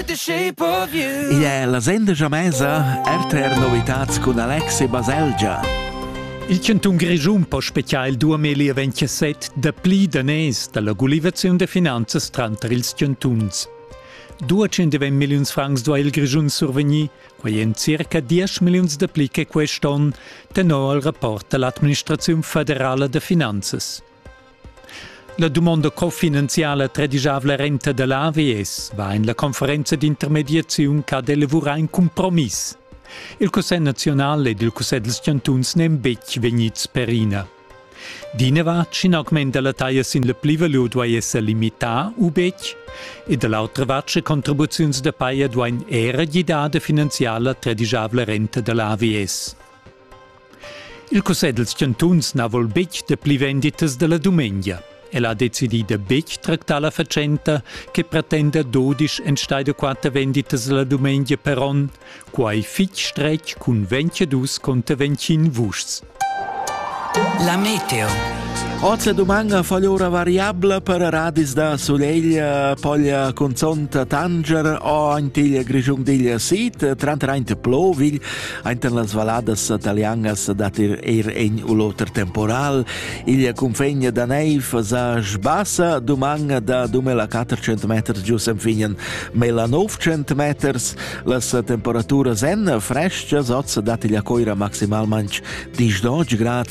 Igl è la sendegia mesa RTR Novitats cun Alexi Baselgia. Il cantun Grischun po speziar il 2027 dapli daners dalla gulivaziun da finanzas tranter ils cantuns. 220 milliuns francs duai il Grischun survegnir, quai en circa 10 milliuns dapli che quest onn, tenor il rapport dall'administraziun federala da finanzas. La dumonda cofinanziala tredigiavla renta da l'AVS va en la conferenza d'intermediaziun ch'ha d'elavurare in compromiss. Il Cussegl nazional ed il Cussegl dels chantuns n'èn betg vegnids perina. D'inavart, sch'in augment da la taglia sin la plivalur duai esser limità u betg, e da l'autra vart, sche contribuziuns da paja duain era gidar da finanziar la tredigiavla renta da l'AVS. Il cussegl dals chantuns na vul betg de pli venditas della dumengia. El ha decidì de betg tractar la fatschenta che pretenda dodisch enstei de quatter venditas la dumengia per onn, quai fitg stretg cun 22 conter 25 vuschs. La meteo. Oz la domanda fa ora variabla per radis da soleglia, poglia conzonta Tanger o antiglia Grigiung diglia Sid, trantraint Plovil, Ainter las valladas italianas dat er, er egn u l'oter temporal. Il cunfegna da neiv sa sbassa duman da dumela 400 meters giu sen finen mela 900 meters. Las temperaturas en freschas oz dat il coira maximalmanc 10 grad